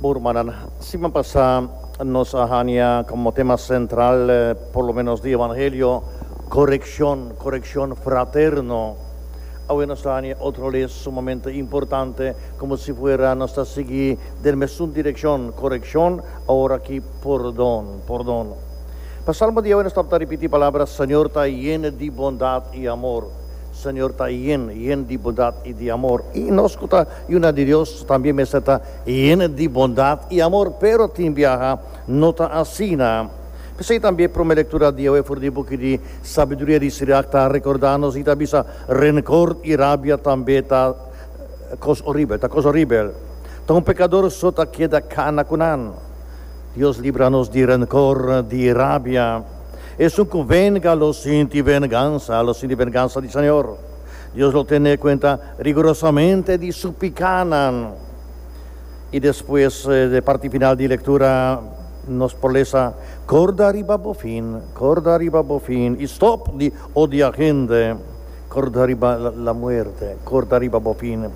Bon rumannan, siman pasá nos a hanja komo tema sentral por lo ménos di evangelio korekshon, korekshon fraterno. Awe nos ta hanja otro les sumamente importante komo si fuera nos ta sigui den mesun direkshon, korekshon, awor aki pordon, pordon. Pa salmo di awe nos tabata ripití palabra Señor ta yen di bondat i amor, Señor ta yen, yen di bondat i di amor. I nos ku ta. Yuna di Dios también mester ta hende di bondad y amor, pero tin biaha no ta asina. P'esei también e prome lectura diawe for di buki di Sabiduria di Sirach ta recorda nos y ta bisa, Rencor y rabia tambe ta cos horibel, ta cos horibel. Ta un pecador so ta keda cana cu nan. Dios libra nos di rencor, di rabia. Esun cu venga lo sinti venganza, lo sinti venganza di Señor. Dios lo tene cuenta rigurosamente di su picanan. Y despues de parti final di lectura nos por lesa, Corda riba bo fin, corda riba bo fin y stop di odia hende, corda riba la muerte, corda riba bo fin.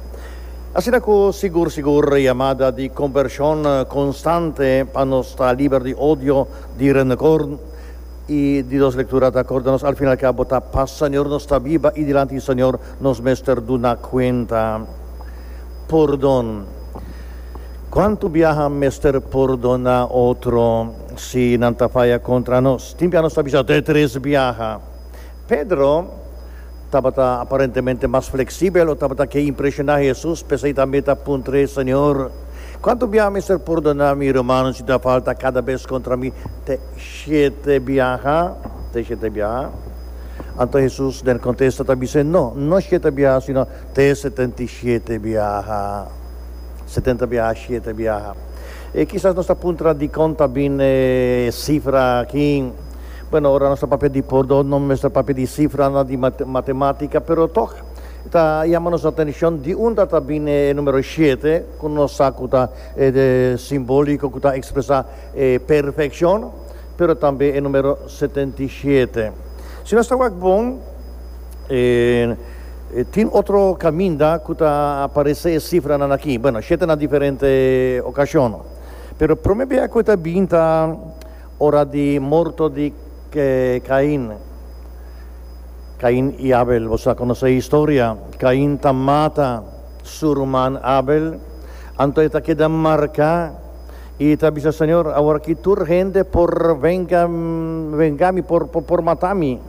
Asina cu sigur sigur yamada di conversion constante pa nos ta liber di odio, di renecor, E di dos lektura ta akorda nos al fin al kabo ta pa Señor nos ta biba i dilanti di Señor nos mester duna kuenta pordon. Kuantu biaha mester pordoná otro si nan ta faya kontra nos? Tin biaha nos ta bisa, Te tres biaha Pedro tabata aparentemente mas fleksibel o tabata ke impreshoná Hesus, p'esei tambe e ta puntra e, Señor, kuantu biaha mester pordoná mi rumannan si ta falta kada bes kontra mi? Te shete biaha? Te shete biaha? Anto Hesus den kontesta ta bis'é, No, no shete biaha, sino te setenta i shete biaha. Setenta biaha, shete biaha. E kisas nos ta puntra dikon ta bini e sifra aki. Bueno, ora nos ta papia di pordon, no mester papia di sifranan di matematica, pero tok e ta yama nos atencion di unda ta bini e numero shete, cu nos sa cu ta simbolico, cu ta expresa e perfeccion, pero tambe e numero setenta i shete. Si nos ta wak bon, tin otro caminda cu ta aparece e sifranan aki, bueno, shete na diferente ocasion, pero prome bia cu e ta bin ta, Ora di morto di Cain. Cain y Abel, boso a conoce e historia. Cain ta mata su ruman Abel, anto e ta keda marca y e ta bisa, Señor, awor aki tur hende por venga venga mi, por por mata mi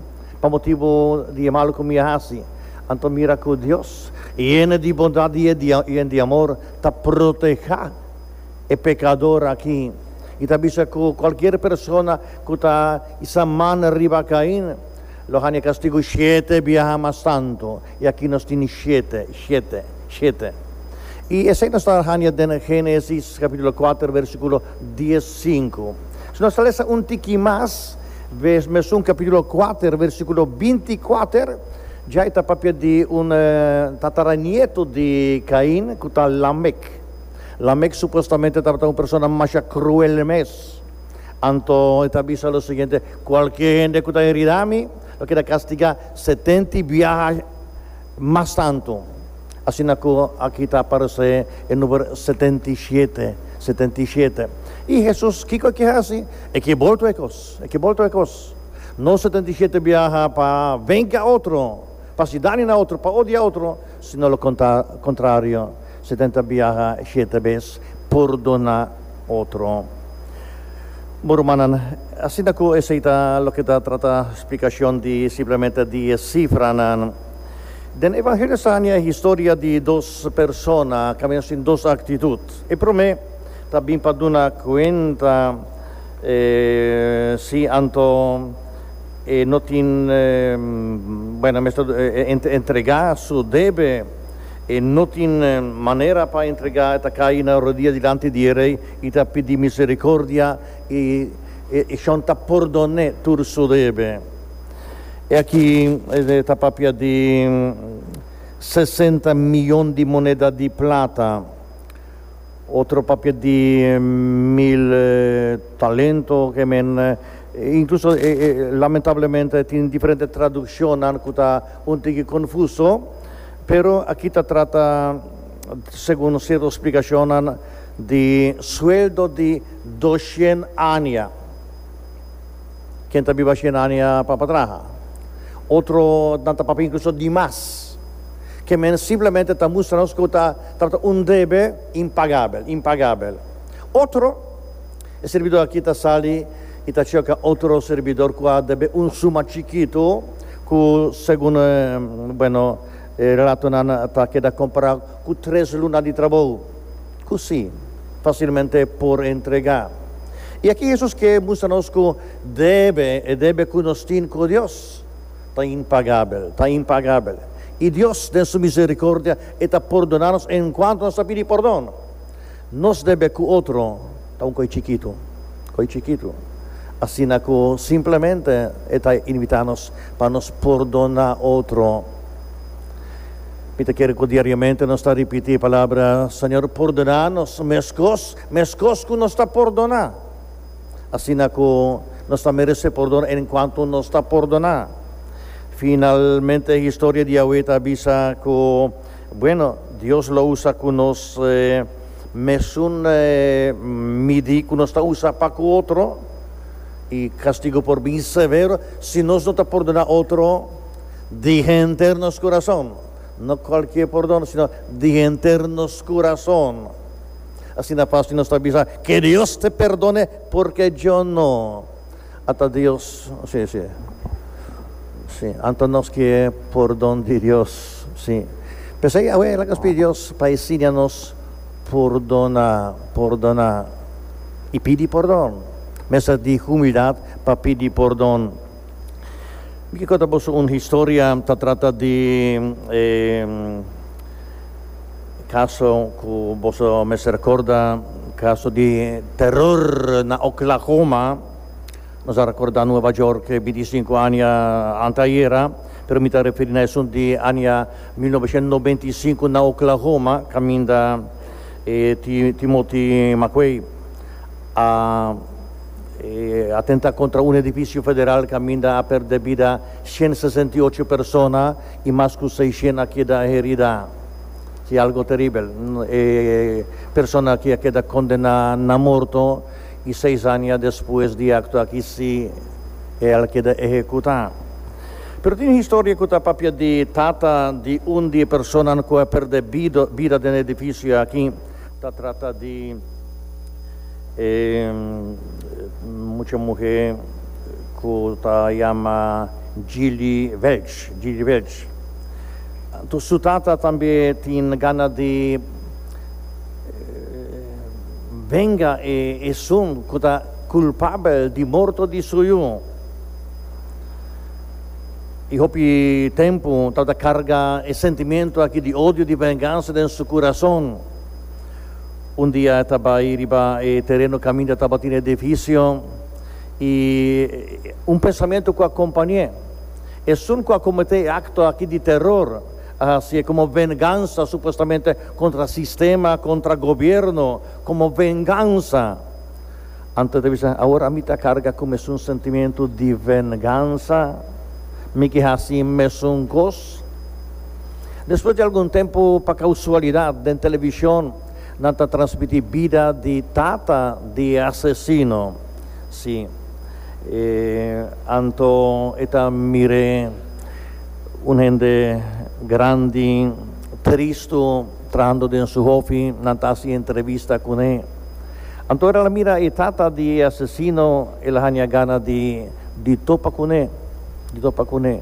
pa motibo di e malo cu mi a haci. Anto mira cu Dios, yene di bondad y y di amor, ta proteha. e pekador aki, i ta bisa ku kualkier persona ku ta isa man riba Kain lo hania kastigu shete biaha mas tantu, i aki nos tin shete, shete, shete. I esei nos ta hania den Génesis kapítulo kuater versíkulo dies sinku. Si nos ta lesa un tiki mas, ves mesun kapítulo kuater versíkulo binti i kuater, djai ta papia di un tataranietu di Kain ku ta Lamek. Lamek supuestamente tabata un persona masha cruel mes, anto e ta bisa lo siguiente, Cualkier hende cu ta heridá mi, lo keda castigá setenta i biaha mas tantu. Asina cu aki ta aparecé e numer setenta i shete, setenta i shete. I Hesus kico e ke haci? E ke bolto e cos, e ke bolto e cos. No setenta i shete biaha pa venga otro, pa haci daño na otro, pa odia otro, sino lo contra, contrario. Si tin ta biaha shete bes, purdoná otro. Bo rumannan, asina ku esei ta loke ta trata splikashon di simplemente die sifranan. Den e evangelio sa haña e historia di dos persona kaminda sin dos aktitut. E promé ta bin pa duna kuenta si anto e no tin, buen, a mester entregá su debe. E no tin manera pa entregá, e ta kai na rodia dilanti di e rei, i ta pidi misericordia, i e shon ta pordon'é tur su debe. E aki ta papia di sesenta mion di moneda di plata, otro papia di mil talento, ke men, inkluso lamentablemente tin diferente traduccionnan ku ta un tiki konfuso. Pero aki ta trata, segun un cierto splicacionnan, di sueldo di doshien ania. Ken ta biba shien ania pa pa traha? Otro nan ta papia incluso di mas. Ke men simplemente ta mustra nos ku ta trata un debe impagabel, impagabel. Otro. E serbidó akí ta sali i ta choka otro serbidor ku a debe un suma chikitu ku segun, bueno, e relatonan ta keda kompará ku tres luna di trabou ku si, fasilmente por entregá. I akí Hesus ke mustra nos ku debe, e debe ku nos tin ku Dios, ta impagabel, ta impagabel. I Dios den su miserikordia e ta pordoná nos enkuantu nos ta pidi pordon. Nos debe cu otro ta un coy chikitu, coy chikitu, asina cu simplemente e ta invita nos pa nos pordona otro. Mi ta kere cu diariamente nos ta ripiti e palabra, Señor, pordona nos mescos, mescos cu nos ta pordona. Asina cu nos ta merece pordon en cuanto nos ta pordona. Finalmente historia di Yahweh ta bisa cu. Bueno, Dios lo usa cu nos mesun midi cu nos ta usa pa cu otro, y castigo por bin severo si nos no ta pordona otro di henter nos curazon, no cualkier pordon sino di henter nos curazon. Asina pas tin nos ta bisa, Que Dios te perdone, porque yo no. Ata Dios, si, si, si, anto nos ke pordon di Dios, si. P'esei awe el a kos pidi Dios pa e siña nos pordona, pordona i pidi pordon. Mester di humildat pa pidi pordon. Mi ke konta boso un historia, ta trata di e. Kaso ku boso mester rekorda, kaso di teror na Oklahoma, nos a rekorda Nueva York e binti i sinku aña anteayera, pero mi ta referi na esun di aña mil novecientos noventa i sinku na Oklahoma kaminda e Timothy McVeigh a atenta kontra un edifisio federal kaminda a pèrdè bida shen sesenta i ocho persona. I mas ku seishen a keda heridá. Si algo teribel. E persona aki a keda kondená na morto i seis aña despues di e akto aki si e al keda ehekutá. Pero tin historia ku ta papia di tata di un di e personanan ku a perdé bida den e edifisio aki. ta trata di e mucha muhé ku ta yama Jilly Welch, Jilly Welch. Su tata tambe tin gana di venga e esun ku ta kulpabel di morto di su yu. i hopi tempu tabata karga e sentimentu aki di odio, di vengansa den su kurason. Un dia e ta bai riba e tereno kaminda tabatin e edifisio i un pensamentu ku a kompañ'é, Esun ku a kometé e akto aki di teror a hasié komo vengansa supuestamente kontra sistema, kontra gobièrnu, komo vengansa. Anto ta bisa, Awor ami ta carga cu mesun sentimentu di vengansa. Mi ki haci e mesun cos. Despues di algun tempu, pa causualidad, den television nan ta transmiti bida di tata di e asesino. Si, e anto e ta mir'e un hende grandi, tristu, trahando den su hofi. Nan ta haci entrevista cun'e. Anto el a mira e tata di e asesino, el a haña gana di di topa kuné, di topa kuné.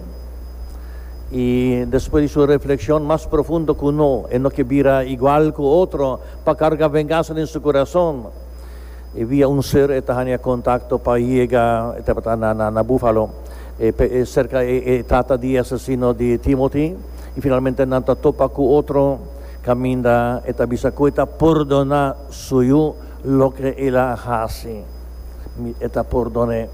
I despues di su reflekshon mas profundo ku no, e no ke bira igual ku otro pa karga vengansa den su kurason, e via un ser e ta haña kontakto pa yega, e tabata na na na Búfalo, e pe e serka e e tata di e asesino di Timothy, i finalmente nan ta topa ku otro. Kaminda e ta bisa ku e ta pordoná su yu loke el a hasi. Mi e ta pordon'é.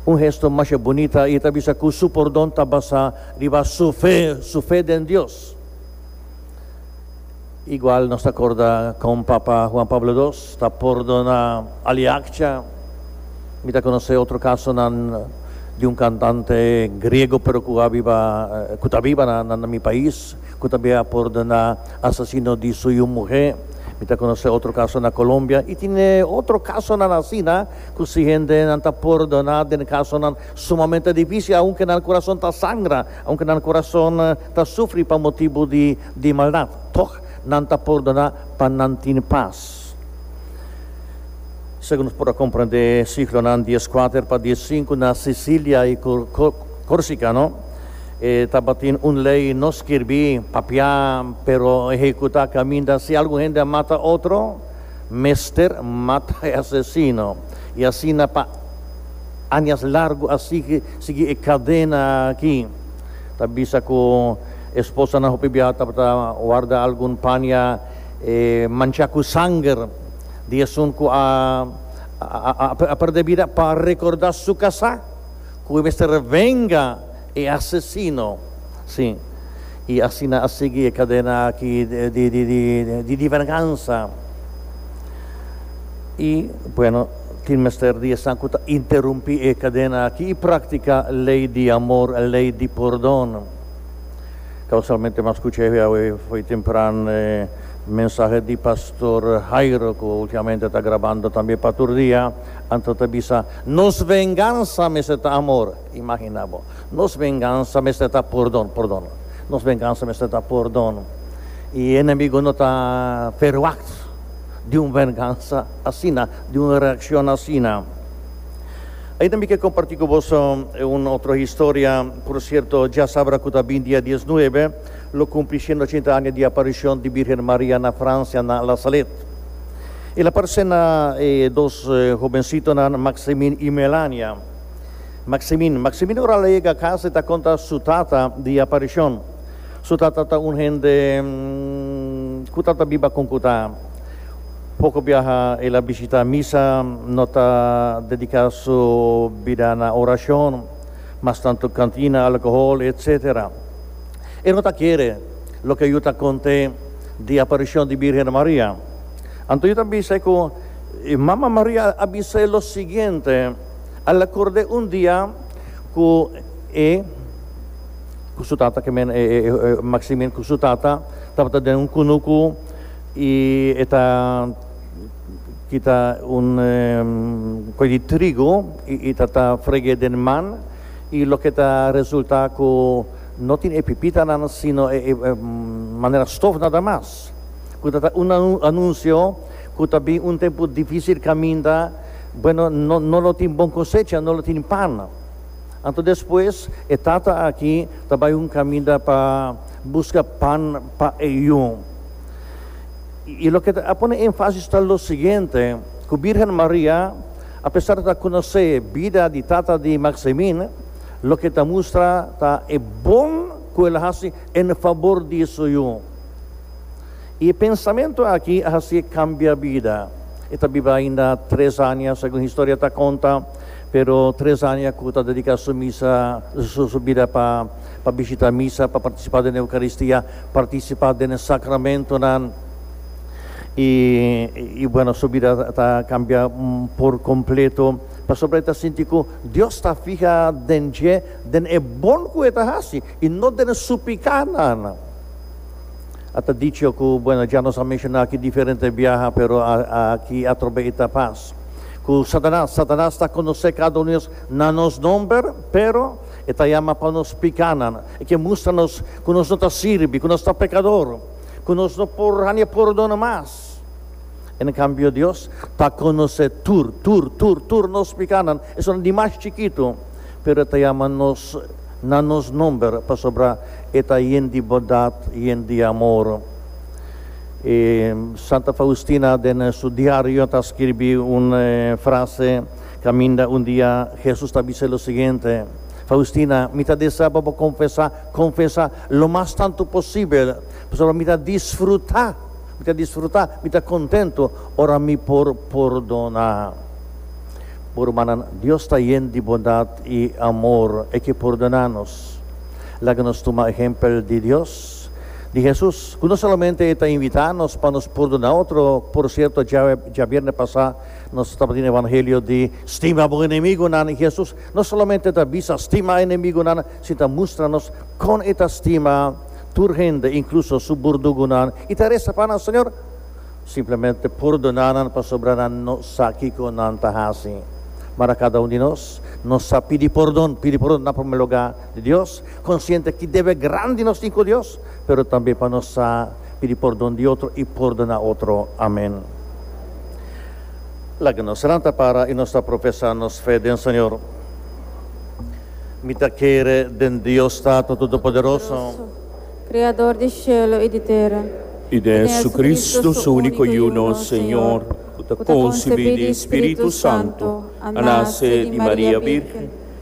Un hesto masha bunita i e ta bisa ku su pordon ta basá riba su fe, su fe den Dios. Igual nos ta korda kon Papa Juan Pablo dos ta pordoná Aliakcha. Mi ta konosé otro kasonan di un kantante griego pero ku a biba ku ta biba na mi pais. cu tambe a pordona asasino di su yu muhe. Mi ta conoce otro caso na Colombia y tin e otro casonan asina cu si hende nan ta pordona den e casonan sumamente dificil aunke nan corazon ta sangra, aunke nan corazon ta sufri pa motibu di maldad, toch nan ta pordona pa nan tin paz. Dios. Segun nos por a comprende siglonan di es kuater pa di es sinku na Sicilia i Corsica, no? E tabatin un ley no skirbí, papiá, pero ehekutá kaminda si algun hende a mata otro, mester mata e asesino. I asina pa añas largu a sigui, sigui e kadena aki. Ta bisa ku e esposanan hopi biaha tabata warda algun pania. E mancha cu sanger di esun cu a a perde bida pa recorda su casa, cu e mester a venga e asesino. Si. Y asina a sigui e cadena aki di di di venganza. Y bueno, tin mester di esnan cu ta interumpi e cadena aki y practica ley di amor, ley di pordon. Ta usualmente mas scucha ehu awe fo'i tempran e mensahe di Pastor Jairo cu ultimamente ta grabando tambe pa tur dia, anto ta bisa, Nos venganza mester ta amor! Imagina bo! Nos venganza mester ta pordon, pordon. Nos venganza mester ta pordon. Y e enemigo no ta ferwagt di un venganza asina, di un reaccion asina. Ain tambe ke kompartí ku boso un otro historia, porsierto djasabra ku ta bin dia diesnuebe lo kumpli shenda ochenta aña di aparishon di Bírgen Maria na Fransia na La Salette. El a parse na e dos hobensitonan Maximín i Melania. Maximín Maximín ora el a yega kas e ta konta su tata di e aparishon. Su tata ta un hende ku ta ta biba kon ku ta. Poko biaha el a bishitá misa, no ta dediká su bida na orashon, mas tantu kantina, alkohol, etc. E no ta kere loke yu ta kont'é di aparishon di Bírgen Maria. Anto yu ta bis'é ku Mama Maria a bis'é lo siguiente, Al a kord'é un dia ku e ku su tata, ke men e Maksimin ku su tata tabata den un kunuku, I e ta kita un koe di trigu i ta ta freg'é den man, i loke ta resultá ku no tin e pipitanan sino e manera stof nadamas, ku ta ta un anunsio ku ta bin un tempu difísil kaminda, Bueno, no lo tin bon kosecha, no lo tin pan. Anto despues e tata aki ta bai un kaminda pa buska pan pa e yu. Y loke a pone enfasis ta lo siguiente, cu Virgen Maria, apesar di ta conoce bida di tata di Maximin, loke ta mustra ta e bon cu el a haci en fabor di su yu. Y e pensamento aki a haci e cambia bida. E ta biba ainda tres anja, segun historia ta conta, pero tres anja cu ta dedica su misa, su bida pa. pa bishitá misa, pa partisipá den e Eukaristía, partisipá den e sakramentunan. I, i bueno, su bida ta kambia por kompleto, pasobra e ta sinti ku Dios ta fiha den dje, den e bon ku e ta hasi i no den su pikánan. A ta dicho ku, bueno, dja nos a menshoná aki diferente biaha, pero aki atrobe i ta pas, ku Satanas, Satanas ta konosé kada un di nos na nos nòmber, pero, E ta yama pa nos piká nan. E ke mustra nos ku nos no ta sirbi, ku nos ta pekador, ku nos no por hania pordona mas. En kambio Dios ta konosé tur, tur, tur, tur nos piká nan, esun di mas chikitu, pero E ta yama nos na nos nòmber, pasobra E ta yen di bondat, yen di amor. E Santa Faustina den su diario ta skirbi un frase. Kaminda un dia Hesus ta bisa lo siguiente, Faustina, mi ta desea pa bo konfesá, konfesá, lo mas tantu posibel, pasobra mi ta disfrutá, mi ta disfrutá, mi ta kontentu ora mi por pordona bo rumannan. Dios ta yen di bondat i amor, e ke pordona nos. Laga nos tuma ehempel di Dios, di Hesus, ku no solamente e ta invitá nos pa nos pordona otro, por sierto, djabier djabierne pasá, Nos tabatin e evangelio di stima bo enemigunan i Hesus no solamente ta bisa stima enemigunan sin ta mustra nos kon e ta stima tur hende inkluso su burdugunan i ta resa pa nan, Señor, simplemente pordona nan pasobra nan no sa kiko nan ta hasi. Mara kada un di nos no sa pidi pordon, pidi pordon na primer lugá di Dios, konsiente ki debe grandi nos tin ku Dios, pero tambe pa nos sa pidi pordon di otro i pordona otro. Amen. Laga nos ranta para i nos ta profesá nos fe den Señor. Mi ta kere den Dios Tata Todopoderoso. Kreador di shelu i di tera. I den Jesucristo, Su úniko i uno Señor, ku ta konsibí di Spiritu Santu, a nase di Maria Bírgen,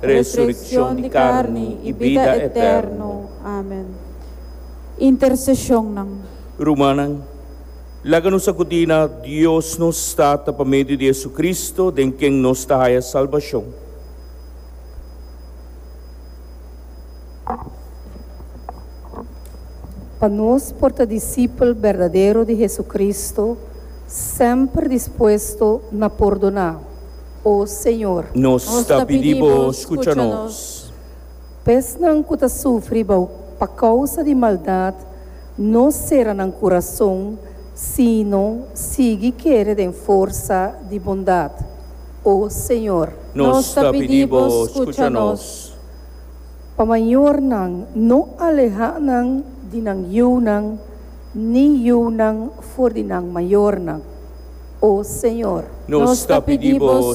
resurekshon di karni i bida eterno. Amen. Interseshonnan. Rumannan, laga nos akudí na Dios nos Tata pa medio di JesuCristo, den ken nos ta haya salbashon. Pa nos por ta disipel berdadero di JesuCristo, semper dispuesto na pordoná. o Señor. Nos ta pidi Bo scucha nos. Pesnan cu ta sufri bou pa causa di maldad, no cera nan curazon, sino sigui kere den forsa di bondad, o Señor. Nos ta pidi Bo scucha nos. Pa mayornan, no aleha nan di nan yiunan, ni yiunan for di nan mayornan, o Señor. Nos ta pidi Bo